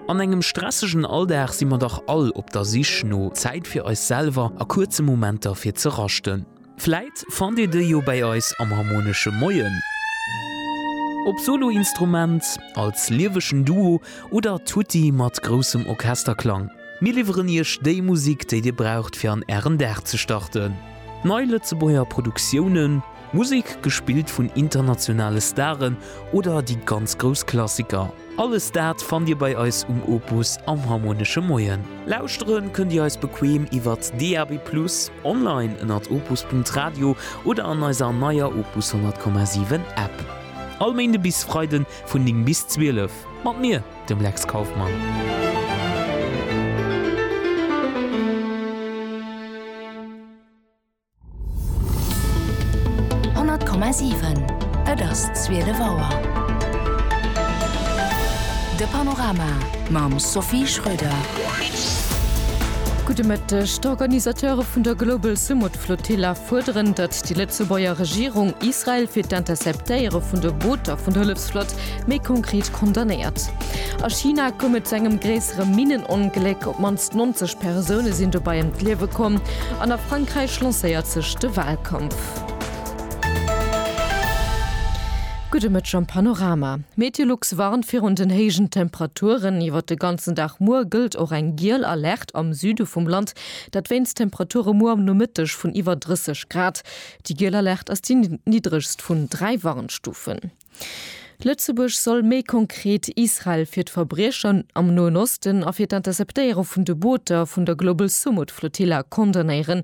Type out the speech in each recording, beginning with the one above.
An engem stressegen Alldag si mer dach all op der Sich no Zäit fir eis selwer a kuerze Momenter fir ze raschten. Vläit fannt Dir déi jo bäi eis am Harmonesche Moien, ob Soloinstrument, als liewegen Duo oder tutti mat groussem Orchesterklang. Mir liwweren Iech déi Musik, déi Dir braucht fir an Ären Dag ze starten. Nei Lëtzebuerger Produktiounen. Musek gespillt vun internationale Staren oder déi ganz grouss Klassiker, alles dat fannt Dir bei eis um Opus am Harmonesche Moien. Lauschtere kënnt Dir eis bequeem iwwert DAB+, online ënnert opus.radio oder an eiser neier Opus 100,7 App. All Méinde bis Freide vun 9 bis 12 mat mir, dem Lex Kauffmann. 100,7 Et ass zwielef Auer. De Panorama mam Sophie Schröder. Gudde Mëtteg. D'Organisateure vun der Global Sumud Flotilla fuerderen, datt déi Lëtzebuerger Regierung Israel fir d'Interceptéiere vun de Booter vun der Hëllefsflott méi konkret condamnéiert. A China koum et zu engem gréissere Minnenongléck, op d'mannst 90 Persoune sinn dobei ëm d'Liewe komm, an a Frankräich lancéiert sech de Wahlkampf. Gudde Mëtteg am Panorama. Meteolux warnt virun den héijen Temperaturen iwwert de ganzen Dag. Muer gëllt och eng giel Alerte am Süde vum Land, dat wéinst Temperature muer am Nomëtteg vun iwwer 30 Grad. Déi giel Alerte ass déi niddregst vun dräi Warnstufen. Lëtzebuerg soll méi konkret Israel fir d'Verbriecher am Noen Osten a fir d'Interceptéiere vun de Booter vun der Global Sumud Flotilla condamnéieren,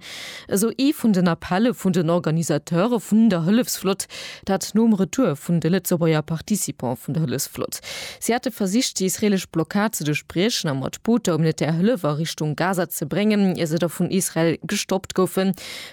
esou ee vun den Appelle vun den Organisateure vun der Hëllefsflott, dat nom Retour vun de Lëtzebuerger Participante vun der Hëllefsflott. Si hate versicht, déi israeelesch Blockad ze duerchbriechen a mat Booter humanitär Hëllef a Richtung Gaza ze bréngen, ier se da vun Israel gestoppt goufen.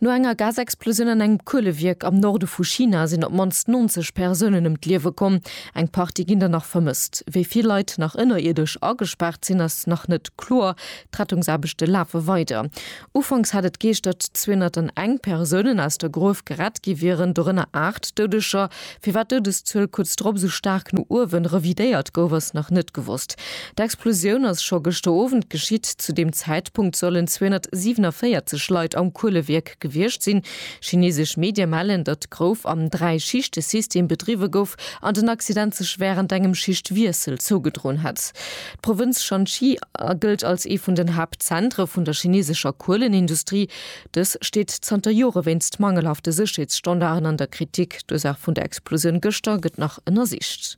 No enger Gasexplosioun an engem Kuelewierk am Norde vu China sinn op d'mannst 90 Persounen ëm d'Liewe komm, eng Partie ginn der nach vermësst. Wéi vill Leit nach ënnerierdesch agespaart sinn, ass nach net kloer. D'Rettungsaarbechte lafe weider. Ufanks hat et geescht, datt 201 Persounen aus der Gruef gerett gi wieren, dorënner 8 Doudeger. Firwat d'Doudeszuel kuerz drop esou staark no uewen revidéiert gouf, ass nach net gewosst. D'Explosioun ass scho gëschter Owend geschitt. Zu deem Zäitpunkt sollen 247 Leit am Kuelewierk gewiescht sinn. Chinesesch Medie mellen, datt d'Grouf am Dräi-Schichte-System bedriwwe gouf an den Accident sech wärend engem Schichtwiessel zougedroen hätt. D'Provënz Shanxi gëllt als ee vun den Haaptzentre vun der chinesescher Kuelenindustrie. Dës steet zanter Jore wéinst mangelhafte Sécherheetsstandarden an der Kritik. D'Ursaach vun der Explosioun gëschter gëtt nach ënnersicht.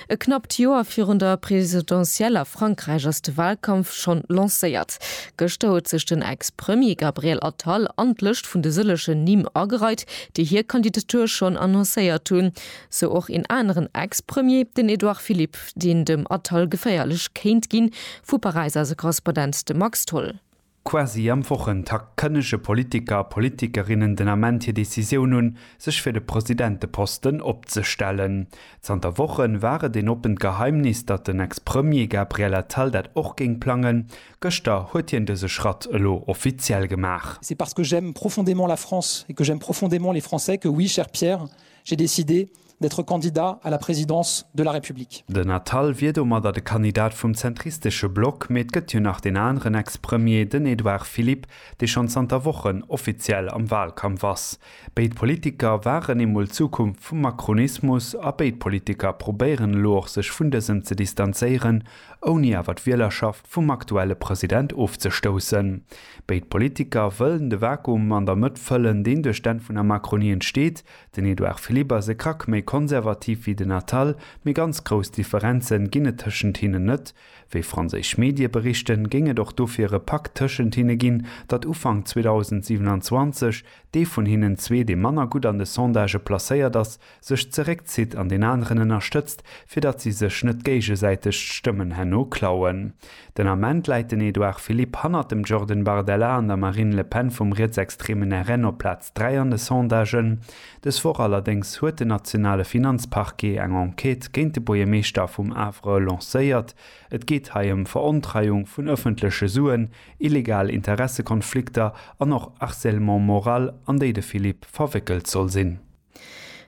E knappt Joer virun der Presidentielle a Frankräich ass de Walkampf schonn lancéiert. Gëschter huet sech den Ex-Premier Gabriel Attal an d'Lëscht vun de sëllegen Nimm agereit, déi hir Kandidatur schonn annoncéiert hunn. Sou och een aneren Ex-Premier, den Edouard Philippe, deen dem Attal geféierlech kéint ginn. Vu Paräis aus e Korrespondent, de Max Tholl. Quasi am Wochentakt kënnege Politiker a Politikerinnen den Ament hir Decisioun un, sech fir de Presidenteposten opzestellen. Zanter Woche war et een oppent Geheimnis, datt den Ex-Premier Gabriel Attal dat och géing plangen. Gëschter huet hien dëse Schratt elo offiziell gemaach. C'est parce que j'aime profondément la France et que j'aime profondément les Français que, oui, cher Pierre, j'ai décidé d'être candidat à la présidence de la République. Den Attal wier domadder de Kandidat vum zentristesche Block, mee et gëtt jo nach deen aneren Ex-Premier, den Edouard Philippe, dee schonn zanter Wochen offiziell am Wahlkampf ass. Béid Politiker waren eemol d'Zukunft vum Macronismus a béid Politiker probéieren elo och sech vun dësem ze distanzéieren, ouni awer d'Wielerschaft vum aktuelle President ofzestoussen. Béid Politiker wëllen de Vakuum an der Mëtt fëllen, deen duerch d'Enn vun der Macronie entsteet, Den Edouard Philippe ass e Krack méi konservativ wéi den Attal, mee ganz grouss Differenze ginn et tëschent hinnen net. Wéi franséisch Medie berichten, géing et och dofir e Pakt tëschent hinne ginn, datt Ufank 2027 dee vun hinnen zwee, dee manner gutt an de Sondagë placéiert ass, sech zeréckzitt an deen aneren ënnerstëtzt, fir datt si sech net géigesäiteg d'Stëmmen herno klauen. Den Ament läit den Edouard Philippe hannert dem Jordan Bardella an der Marine Le Pen vum rietsextreemen RN op Plaz. Dräi an de Sondagen. Dës Woch allerdéngs huet den nationale Finanzparquet eng Enquête géint de Buergermeeschter vum Havre lancéiert. Et geet hei ëm Verontreiung vun ëffentleche Suen, illegal Interessekonflikter an och Harcèlement moral, an déi de Philippe verwéckelt soll sinn.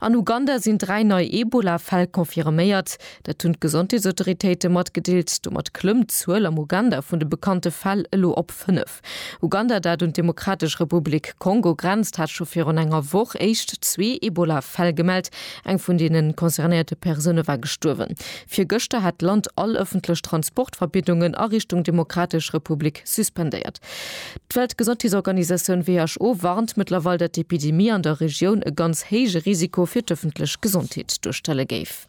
An Uganda sinn dräi nei Ebola-Fäll confirméiert. Dat hunn d'Gesondheetsautoritéite matgedeelt. Domat klëmmt d'Zuel am Uganda vun de bekannte Fäll elo op fënnef. Uganda, dat un d'Demokratesch Republik Kongo grenzt, hat scho virun enger Woch éischt zwee Ebola-Fäll gemellt. Eng vun deene concernéierte Persoune war gestuerwen. Virgëschter hat d'Land all ëffentlech Transportverbiddungen a Richtung Demokratesch Republik suspendéiert. D'Weltgesondheetsorganisatioun who warnt mëttlerweil, datt d'Epidemie an der Regioun e ganz héije Risiko fir d'ëffentlech Gesondheet duerstelle géif.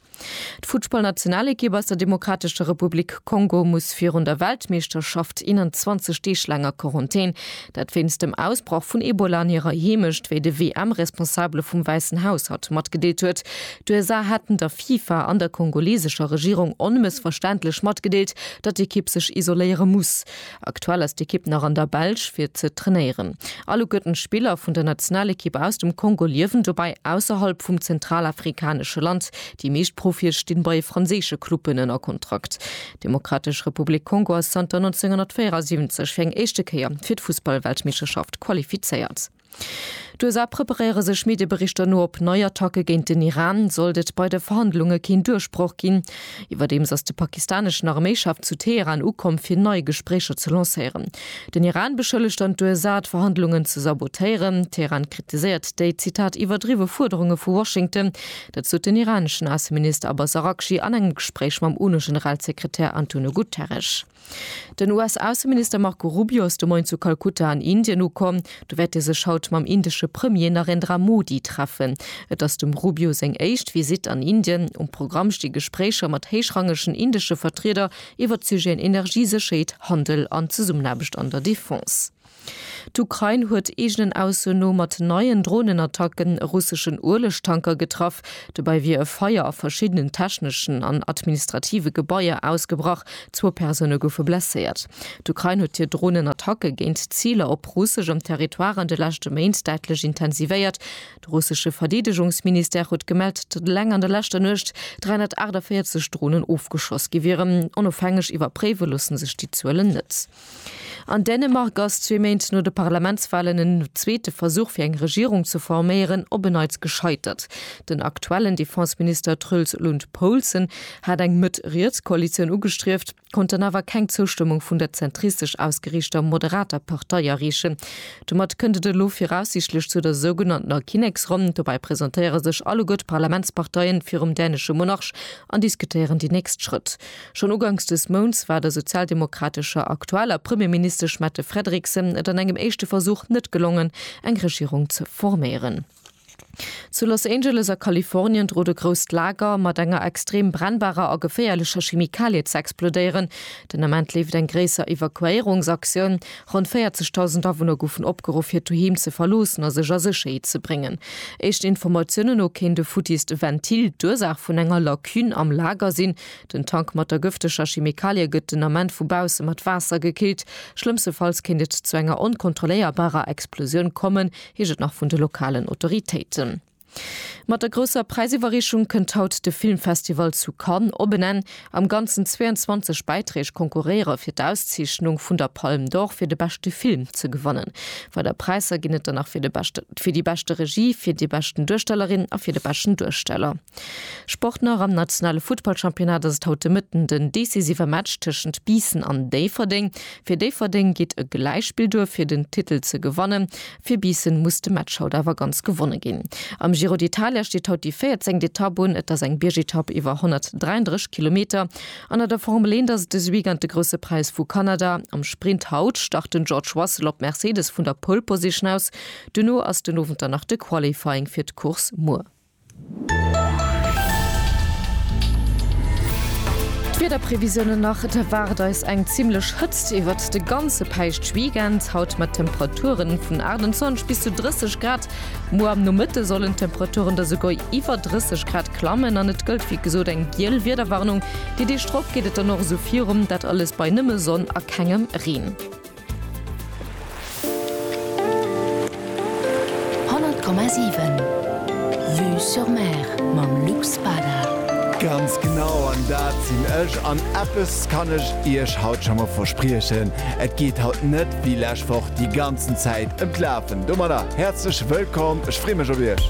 D'Futtballnationalekipp aus der Demokratescher Republik Kongo muss virun der Weltmeeschterschaft 21 Deeg laang a Quarantän, dat wéinst dem Ausbrach vun Ebola an hirer Heemecht, wéi de WM-Responsabele vum Wäissen Haus haut matgedeelt huet. D'USA haten der FIFA an der kongolesescher Regierung onmëssverständlech matgedeelt, datt d'Ekipp sech isoléiere muss. Aktuell ass d'Ekipp nach an der Belsch fir ze trainéieren. All u gëtt en Spiller vun der Nationalekipp aus dem Kongo liewen dobäi ausserhalb vum zentralafrikanesche Land. Déi meescht Profie stinn bei franséische Clubben ënner Kontrakt. D'Demokratesch Republik Kongo ass zanter 1974 fir eng éischte Kéier fir d'Fussballweltmeeschterschaft qualifizéiert. D'USA preparéiere sech Medieberichter no op nei Attacke géint den Iran, sollt et bei de Verhandlunge keen Duerchbroch ginn. Iwwerdeems ass de pakistaneschen Arméichef zu Teheran ukomm, fir nei Gespréicher ze lancéieren. Den Iran beschëllegt dann d'USA, d'Verhandlungen ze sabotéieren. Teheran kritiséiert déi, Zitat, iwwerdriwwe Fuerderunge vu Washington. Dat sot den iraneschen Ausseminister Abbas Araghchi an engem Gespréich mam UNO-Generalsekretär Antonio Guterres. Den US-Ausseminister Marco Rubio ass de Moien zu Kalkutta an Indien ukomm. Do wäert e sech haut mam indesche Premier Narendra Modi treffen. Et ass dem Rubio seng éischt Visitt an Indien. Um Programm sti Gespréicher mat héichrangegen indesche Vertrieder iwwert d'Sujeten Energie, Sécherheet, Handel an Zesummenaarbecht an der Defense. D'Ukrain huet eegenen Ausso no mat neien Dronenattacken e russeschen Uelegtanker getraff. Dobäi wier e Feier a verschiddenen techneschen an administrative Gebaier ausgebrach, zwou Persoune goufe blesséiert. D'Ukrain huet hir Dronenattacke géint Ziler op russeschem Territoire an de leschte Méint däitlech intensivéiert. De russesche Verdeedegungsministère huet gemellt, datt eleng an der leschter Nuecht 348 Dronen ofgeschoss gi wieren. Onofhängeg iwwerpréiwe loosse sech déi Zuelen net. An Dänemark ass zwee Méint no de Parlamentswalen en zweete Versuch fir eng Regierung ze forméieren op e Neits gescheitert. Den aktuellen Defenseminister Truls Lund Poulsen hat eng Mëtt-Riets-Koalitioun ugestrieft, konnt dann awer keng Zoustëmmung vun der zentristesch ausgeriichter moderater Partei erreechen. Domat kënnt et elo viraussiichtlech zu der sougenanntener Kinneksronn. Dobäi presentéiere sech alleguer d'Parlamentsparteien virum dänesche Monarch an diskutéieren déi nächst Schrëtt. Schonn uganks des Mounts war der sozialdemokratescher aktueller Premierministesch Mette Frederiksen et an engem éischte Versuch net gelongen, eng Regierung ze forméieren. Zu Los Angeles a Kalifornien drot e grousst Lager mat enger extrem brennbarer a geféierlecher Chemikalie ze explodéieren. Den Ament leeft eng gréisser Evakuéierungsaktioun. Ronn 40.000 Awunner goufen opgeruff hiert Doheem ze verloossen a sech a Sécherheet ze bréngen. Éischten Informatiounen no kéint e futtiist Ventil d'Ursaach vun enger Lacune am Lager sinn. Den Tank mat der gëfteger Chemikalie gëtt den Ament vu bausse mat Waasser gekillt. Schlëmmstefalls kéint et zu enger onkontrolléierbarer Explosioun kommen, heescht et nach vun de lokalen Autoritéiten. Mat der grousser Präisiwwerreechung kënnt haut de Filmfestival zu Cannes op en Enn. Am Ganzen 22 Bäiträg konkurréiere fir d'Auszeechnung vun der Palme d'Or fir de beschte Film ze gewannen. Weider Präisser ginn et dann nach fir déi beschte Regie, fir déi beschten Duerstellerin a fir de beschten Duersteller. Sport nach, Am nationale Futtballchampionnat ass et haut de Mëtten den decisive Match tëschent Biissen an Déifferdeng. Fir Déifferdeng geet e Gläichspill duer fir den Titel ze gewannen. Fir Biissen muss de Match haut awer ganz gewonne ginn. Am Giro d'Italia steet haut déi véierzéngt Etapp un. Et ass eng Biergetapp iwwer 133 Kilometer. An a der Formel eent ass et dëse Weekend de Grousse Präis vu Kanada. Am Sprint haut start den George Russell op Mercedes vun der Pole Position aus. Duerno ass den Owend dann nach de Qualifying fir d'Course muer. D'Wiederprevisiounen nach, Et erwaart eis eng zimmlech Hëtzt iwwert de ganze Päischtweekend, haut mat Temperature vun 28 bis zu 30 Grad. Muer am Nomëtte sollen d'Temperaturen da souguer iwwer 30 Grad klammen an et gëllt wéi gesot eng giel Wiederwarnung. Déi Deeg drop geet et dann och esou virum, dat alles bei nëmme Sonn a kengem Reen. Honnert Komma siwen, Vue sur Mer mam Luc Spada. Ganz genau, an dat sinn ech. An eppes kann ech iech haut scho mol verspriechen, Et geet haut net wéi lescht Woch déi ganzen Zäit ëm d'Lafen. Domadder häerzlech wëllkomm, ech free mech op iech.